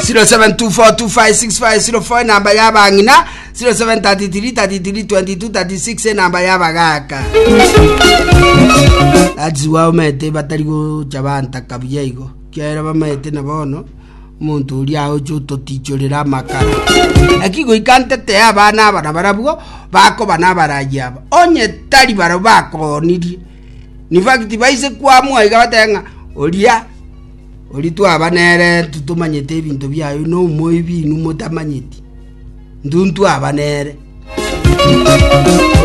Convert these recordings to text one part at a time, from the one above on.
07242565 enamba yabang'ina 0733332236 enamba yabagaka that's why omete batari gocha bantaka buya igo kiaera bamete na bono omonto oria aoche ototichorera amakara eki goika ntete ya abana abana barabwo bakoba nabaraji aba onye tari baro bakonirie in fact baise kwamwa iga bateba ng'a oria Oria twaba nere totomanyeti ebinto biaye, nomoibi inwe motamanyeti. Intwe ntwaba nere.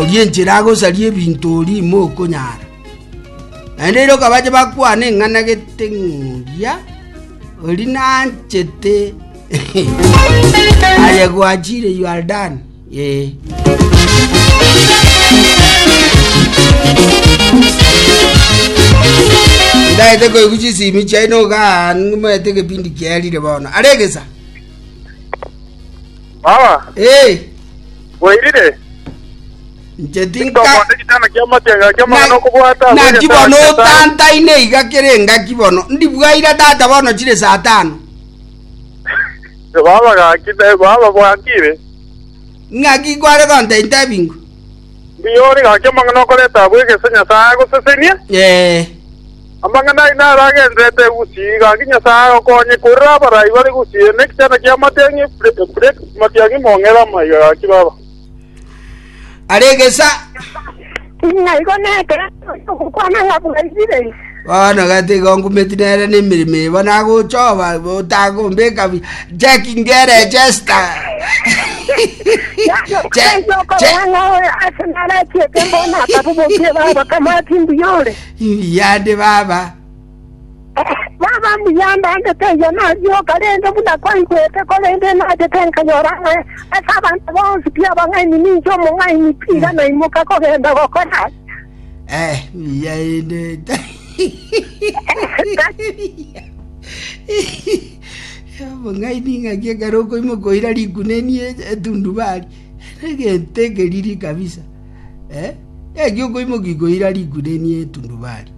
Oria enchera agosaria ebinto oria ime okonyara. Naende ere okabache bakwane ing'ana gete ng'oria oria nanchete aye gwachire you are done. Ndagete koigwa chisimi chiaino igaa nimanyete egepindi kiarire bono. Are egesa. Baba, Eh, bwairire? inche tinka Tokobwate gitana kia matenga kia magana okobwata ase naki egetara bono kia Nyasaye. otantaine iga kere engaki bono ndibwaire tata bono chire saa tano Baba gaki, baba bwakire. Ng'aki kware gontainta ebingo? Mbuya ore gaki amang'ana okoreta agwo egese Nyasae agosesenie. Amang'ana aino aro agenderete egusii gaki Nyasae agokonye korera abarai bare gusii eye nekichana ki'amatiang'i, Epureti, matiang'i mong'ere amaiga gaki baba. aregesa Naigo nekeene ogokwana ng'a bwairire. bono gati igo ngumeti nere nemirimo eba nagochoba otagombeka bi jeki ngere jesta Yaani okorora ng'a oyo ase narachiete mbono akabobokia baba kamati mbuyore. yande baba Baba mbuya andagete erio nagioka rende buna kwaigwete, korende enachete nkanyora ng'a ase abanto bonsi pi abang'aini ninche omong'aini pi. Iga naimoka kogenda gokora aya. Eh, mbuya inde omong'aini ng'aki ekero okoimoka oira riguna eni e- etundubari egento ekeriri kabisa eh? ng'aki okoimoka ikoira riguna eni etundubari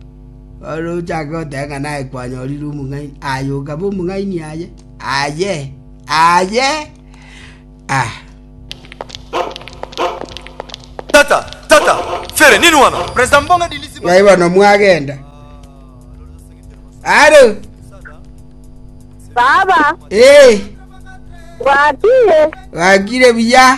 Ore ochake goteba ng'a naye kwanyorire omong'aini, aye okabe omong'aini aye? Aye, aye! Ah. Tata, tata, fere nini wano? President Mbonga dilisi ba- Naye bono mwagenda. Aro, Baba, eh, wakiye? wakire buya.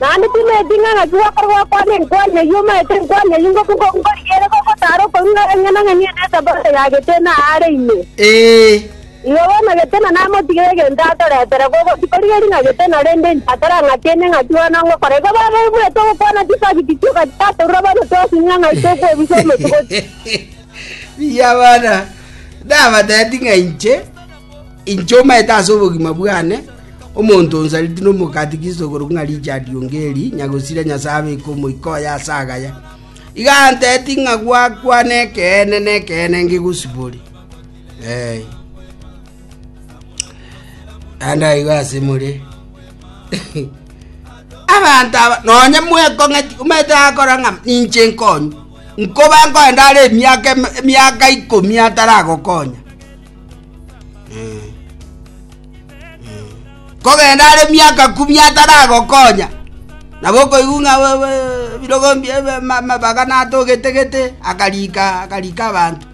Naende timanyeti ng'a ng'aki gwakorwa gokwana enkwari eyio omaete enkwari eyio ngoku ngoku ngorigia ere gogotaara okoigwa ng'a eng'ana ng'eni ene esabote ya Getena aare ime. Ee. Igo bono Getena namotigire egento atoretere, gogotikorireri ng'a Getena, rende inche atarang'atinie ng'aki bono ngokora. Igo babebuete ogokwana chisabiti chioka chitatorwa bono twasing'a ng'ai tokobisa omochie gochia. Mbuya bono, nabatebi ng'a inche. Inche omaete ase obogima bwane, omonto o Nsariti nomogati Kristo okorokwa ng'a Richard Ongeri, Nyagosira Nyasae abeke omoika oye ase agaya, iga anteti ng'a gwakwana ekeene nekeene ngegosibore. Eh. Naende aigo ase more. abanto aba nonye mwekong'eti omanyete akora ng'a ninche nkonyu nkoba nkoenda are emiaka emiaka ikomi ataragokonya kogenda are miaka kumi ataragokonya nabo okoigwa ng'a ebirogo mbia amabaga natogetegete akarika akarika abanto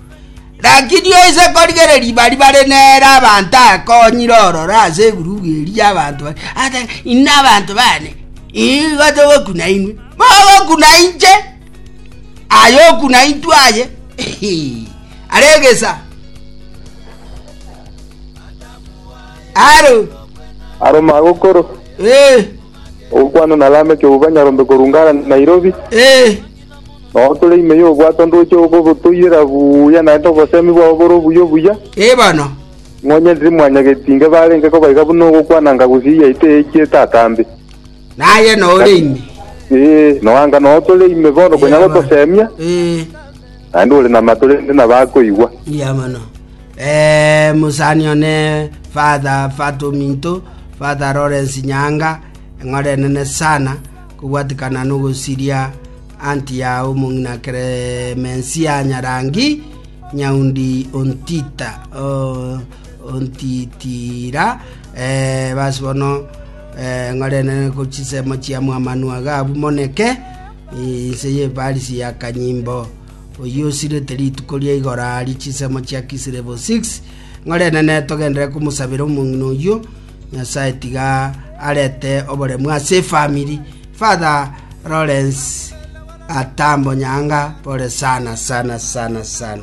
lakini oise korigera riba ribare nere abanto akonyire ororo ase egurubu eri ya abanto baria agote inwe abanto baane igo togokuna inwe mogokuna inche aye okuna intwe aye. Aregesa. Aro. Aro magokoro. Eh. Ogokwana na Lameki obwo banyarombe korwa Ngara Nairobi. Eh. Nao tore ime y'obwato ndoche okobotoirera buya naende obosemi bwao bore obuya obuya. Eh bono. Ng'onye ndiri mwanyageti inge barenge kobaiga buna ogokwana nga gusii yaito eechiete atambe. Naye nore ime. Eh, noanga nao tore ime bono konya gotosemia. Eh. Naende ore namato rende nabo akoigwa. Mbuya mono. Eh, mosani one Father Fat Ominto, Father Lawrence Nyaanga, eng'ora enene sana, kobwatikana nogosiria anti ya omong'ina Clemencia Nyarangi, Nyaundi Ontita, oh, Ontitira, eh, basi bono, eh, eng'ora enene kochisemo chiamwamanu aga abumoneke, Inse y'Efarisi ya Kanyimbo, oyio osirete rituko ria igoro aaria chinsemo chia Kisilevo 6, ng'ore enene togenderere komosabera omong'ina oyio, Nyasae tiga arete oboremu ase efamiri. Father Lawrence Atambo Nyanga, pore sana sana sana sana.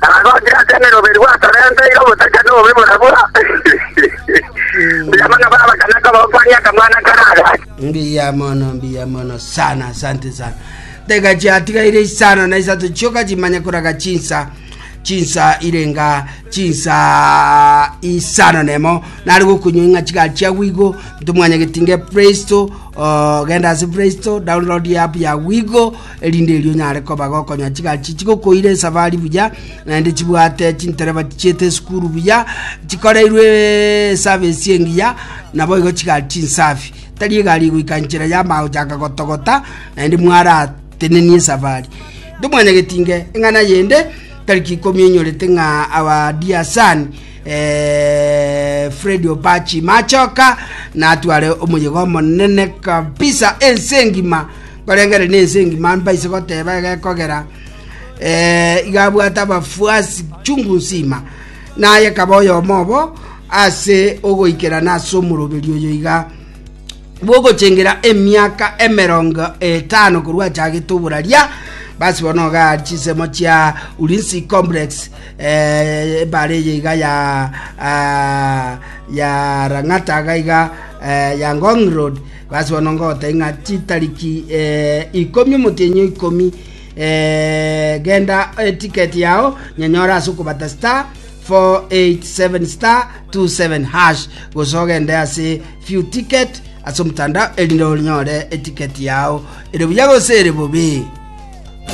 Nagochire ase emeroberi gwasorenteire obosacha na obobe borabwo, mbuya mono baba kana kobokwania akamwana kare aga. Mbuya mono, mbuya mono sana, asante sana. Tega chiatigaire isano na isato chioka chimanye koraga chinsa chinsa irenga chinsa isano nemo nari gokunywa ing'a chiga chiawigo ntomwanya getinge play store uh, genda ase play store download ya app ya wigo erinde erio onyare koba gokonya chigachi chigokoira esafari buya, naende chibwate chintereba chichiete esukuru buya, chikoreirwe esavesi engiya, naboigo chigari chinsafi. Tari egari egoika nchera yama gochaka gotogota, naende mwaratenenie esafari. Nde omwanyagetinge eng'ana yende tariki ikomi enyorete ng'a our dear son eh, Fred Opachi Machoka natware omoyega omonene kabisa ense engima Barengere nense engima mbaise goteba egekogera, ee, iga abwate abafuasi chungu nsima. Naye kaba oyomo obo ase ogoikerana ase omoroberi oyo iga bw'ogochengera emiaka emerongo etano korwa achagete oboraria basi bono iga ari chinsemo chia Ulinzi Complex eh, ebare eye iga ya ah, ya Lang'ata iga iga eh, ya Ngong Road Basi bono ngogoteebia ng'a chitariki ikomi, omotienyi o ikomi, genda etiketi yao nyanyore ase okobata star 487 star 27 hash gose ogende ase few ticket ase omotandao erinde onyore etiketi yao ere buya gose ere bobe.